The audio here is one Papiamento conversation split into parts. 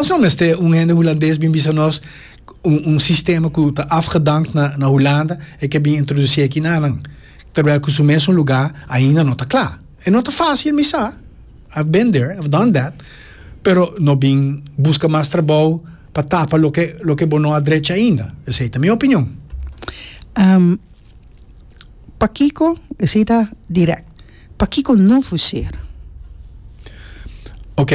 Nos no mester un hende Hulandes bin bisa nos un un sistema cu ta afgedankt na na Hulanda e ke bin introduci aki na nan, terwijl cu su mesun luga ainda no ta cla. E no ta facil mi sa, I've been there, I've done that, pero no bin busca mas trabou pa tapa loke loke bo no a drecha ainda. Esey ta mi opinion. Pakico esey ta direct? Pakico no fusera? Ok,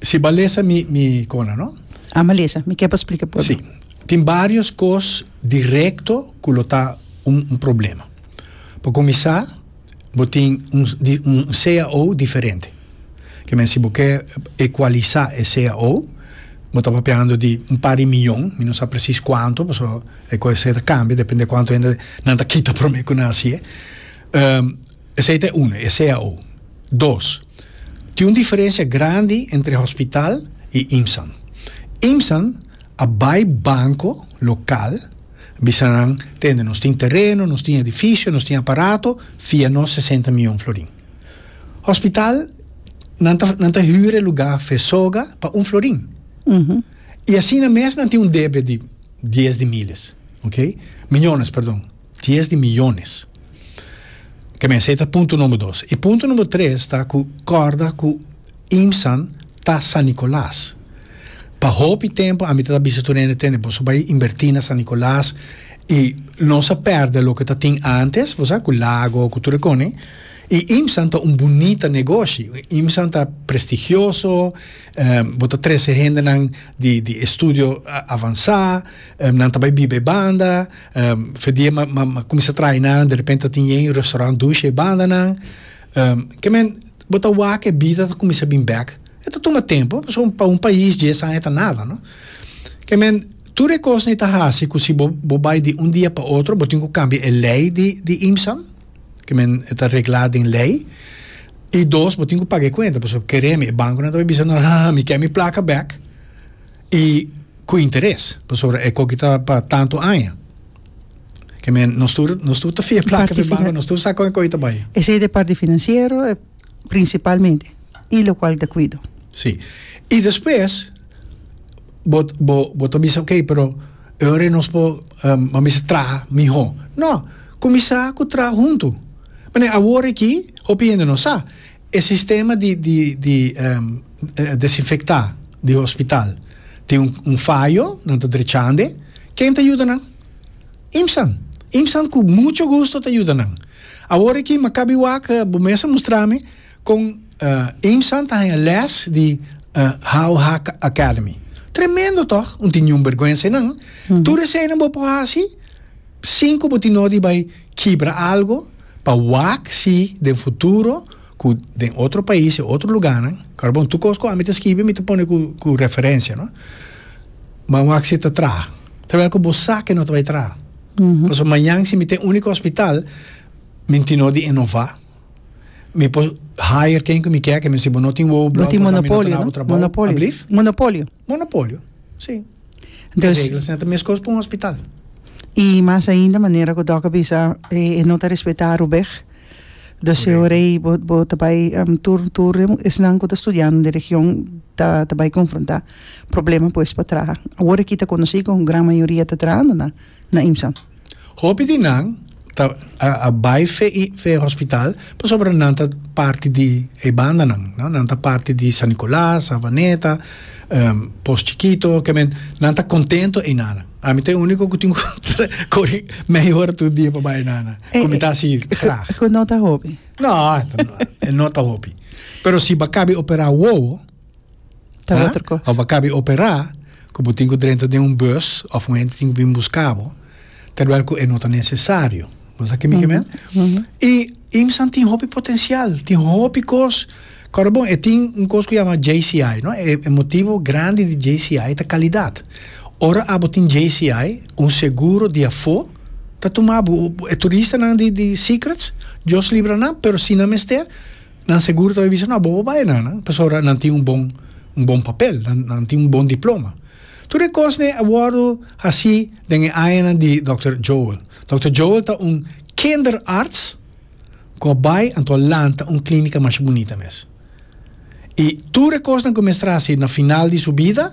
si bo a lesa mi, mi cona, no? A ma lesa, mi kier pa splica por bo. Si, tin barios cos directo cu lo ta un un problema. Pa cuminsa, bo tin un un cao diferente. Ke men si bo ke ecualisa e cao, bo ta papiando di un par di miyon, mi no sa precies cuanto, paso e cosnan ta cambia, depende cuanto hende nan ta kita prome cu nan haci'e. Esei ta e unu, e cao. Dos, tin un diferensia grandi entre hospital i IMSAN. IMSAN a bai banko lokal bisa nan tende nos tin tereno, nos tin edifisio, nos tin aparato, fia nos sesenta mion florin. Hospital nan ta nan ta hür e lugá Fesoga pa un florin. I asina mes nan tin un debe di dies di miles, oke, miñones, perdon. Dies di miyones. Ke mester ta punto number dos. I punto number tres ta ku kòrda ku IMSAN ta San Nicolas. Pa hopi tempu ami ta bisa tur hende tende boso bai inverti na San Nicolas i nos a pèrdè loke ta tin antes, bo sa, ku lago ku tur e konen. I IMSAN ta un bunita negoshi. IMSAN ta prestigioso, bo ta trese hendenan di estudio avansá, nan ta bai biba e banda. Fedie ma ma ma cuminsa traina de repente tin yen restaurant dushi e banda nan ke men bo ta wak ke bida ta cuminsa bin bek e ta tuma tempo pasobra un pa un pais dies aña ta nada no ke men tur e cosnan e ta haci cu si bo bo bay di un dia pa otro bo tin cu cambia e ley di di IMSAM ke men e ta regla den ley y dos bo tin cu paga e cuenta pasobra keremi e banco nan ta bay bisa nan mi ke mi placa bek. Y cu interes, pasobra e coki ta pa tanto aña. Ke men, nos tur, nos tur ta fia plaka den banco, nos tur sa con e coki ta bay. Esey ta e parti financiero, principalmente, y locual ta cuido. Sí. Y despues, bo, bo, bo ta bisa, ok, pero e ora nos por, bo mester traha miho. No. Cuminsa cu traha hunto. Mane, awor aki, hopi hende no sa. E sistema di di di desinfecta di hospital tin un fayo, nan ta drechande, ken ta yuda nan? Imsan, Imsan cu mucho gusto ta yuda nan. Awor aki Makabiwak bo mes a mustrami con Imsan ta haya les di How Hack Academy. Tremendo toch? Un tin niun berguensa e nan. Tur esey nan bo por haci sin cu bo tin nodi bay kibra algo pa wak si den futuro ku den otro pais o otro luganan ora bon tur kos ku ami ta skibi mi ta pone ku referencia no ban wak si ta traha trabel ku bo sa ke no ta bai traha pasobra mañan si mi ten uniko hospital mi tin no di inova. Mi por hire ken ku mi ke, ke mi si bo no tin wowo blòk No tin patabra mi no ta monopolio, daba no? trabou. Monopolio. Ablief? Monopolio. Monopolio, si. E Entonces, reglas nan ta meskos pa un hospital. i mas ainda manera ku Dòk a bisa, e e no ta respetá Rubèg. Dus si Correcto. ora ei bo bo ta bai am tur tur e esnan ku ta studiando den region ta ta bai konfrontá problema pues pa traha. Awor aki ta konosí ku gran mayoria ta trahando na na IMSA. Hopi di nan ta a bai fe i fe hospital pasobra nan ta parti di e bandanan no nan ta parti di San Nicolas Savaneta Pos Chikito ke men nan ta kontento e nana ami ta e uniko ku tin ku kore mei hora tur dia pa bai e nana ku mi ta hasi grag ku no ta hopi no no ta hopi pero si ba kabe opera wowo. Ta otro kos. Ora bo kabi operá, ku bo tin ku drenta den un bùs òf un hende tin ku bin buska bo, terwèl ku e no ta nesesario. Bo ta sa kiko mi ke mende? I IMSAn tin hopi potensial, tin hopi kos. Kòrda bon, e tin un kos ku yama JCI, no? E motibu grandi di JCI ta kalidat. Ora abo tin JCI, un seguro di afó ta tuma bo. E turistanan di Secrets, Dios libra nan, pero si nan mester, Nan segur ta bai bisa, No, bo por bai na nan, pasobra nan tin un bon un bon papel, nan nan tin un bon diploma. Tur e kosnan a wòrdu hasí den e añanan di dòkter Joel. Dòkter Joel ta un kinderarts ku a bai anto a lanta un klínika masha bunita mes. I tur e kosnan ku e mester hasi na final di su bida,